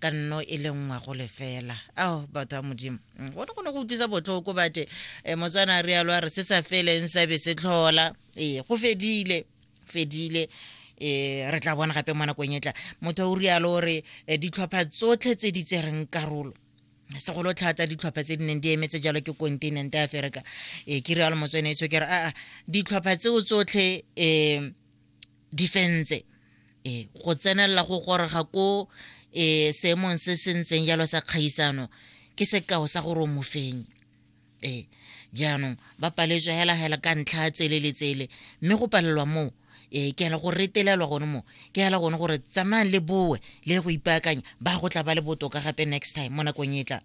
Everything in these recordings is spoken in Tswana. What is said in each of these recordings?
ka nno e le nngwe go lefela ao batho ba modimo mm, gone go ne go utlwisa botlhoko bate um eh, motswana a rialo a re se sa feleng sa be se tlhola ee go fedile fedile um re tla bona gape mo nakong e tla motho o rialo o re eh, ditlhopha tsotlhe tse di tsereng karolo segolo tlhata ditlhopha tse di neng di emetse jalo ke continent ya aferika um ke rialo motswanetso ke re aa ditlhopha tseo tsotlhe um difense e go tsenelela go goroga ko e seemong se se ntseng jalo sa kgaisano ke sekao sa gore o mofeng e jaanong ba paletswe hela hela ka ntlha tsele le tsele mme go palelwa moo e ke hela go retelelwa gone mo ke hela gone gore tsamayang le boe le go ipaakanya ba go tla ba le botoka gape next time mo nakong e tlang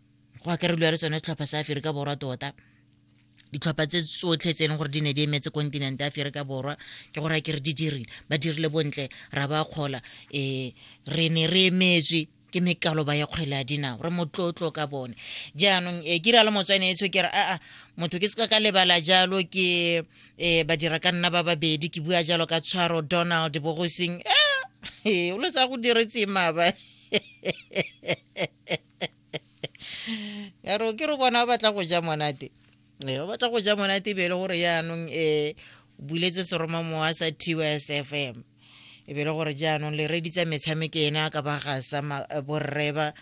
go akarediwa le sone setlhopha sa aferika borwa tota ditlhopha tse tsotlhe tse e leng gore di ne di emetse kontinente aferika borwa ke gore a ke re di dirile ba dirile bontle ra ba kgola um re ne re emetswe ke mekaloba ya kgwele ya dinao re motlotlo ka bone jaanong um ke rialo motswane etsho ke re aa motho ke seka ka lebala jalo ke um badira ka nna ba babedi ke bua jalo ka tshwaro donald bogosing e o le tsa go diretseng maaba ya re ke re bona o batla go ja monate ee o batla go ja monate be e le gore jaanong um buletse seroma mowa sa t o s f m e be e le gore jaanong le reditsa metshameko ene a ka ba gasa eh, borreba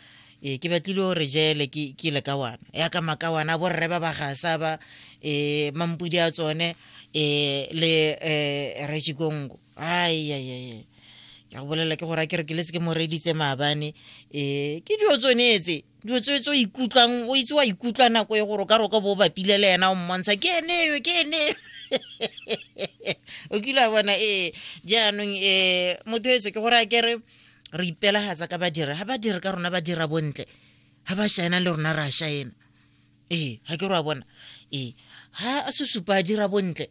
e ke batlile gore jele ke le ka wana ya ka maka wana borreba ba gasa ba um mampudi a tsone um le um rejikongo aiaiae ka go bolela ke gore a ke re ke le se ke mo reditse maabane um ke dilo tsonetse dilo tse tse o ikutlwang o itse wa ikutlwa nako e gore o ka roka bo o bapile le ena o mmontsha ke eneyo ke eneyo o kile a bona ee jaanong um motho etso ke gore a kere re ipelagatsa ka badiri ga badiri ka rona ba dira bontle ga ba shaena le rona re a shaena ee ga ke re wa bona ee ga sesupa a dira bontle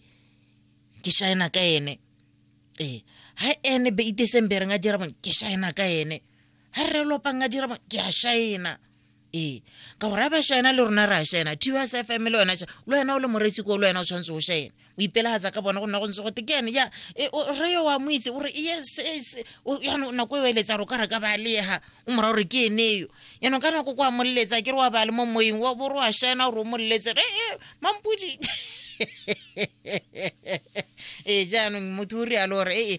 ke shaena ka ene ee ha ene be iteseng be reng a dira bone ke shaena ka ene ha re lopang a dira bone ke a shaena ee ka gore a ba shaena le rona re a shaena tus fm le wena le wena o le moretsi ko le wena o tshwanetse o shaena o ipelagatsa ka bona go nna go ntse gote ke ene ya e, re yo wa mo itse o re yes yes yaanong nako e o eletsa gore o ka re ka ba leha o mora gore ke ene yo yaanong ka nako ko a moleletsa ke re wa ba le mo moyeng wa bore wa shena gore o moleletse re e mampodi ee jaanong motho o rialo gore ee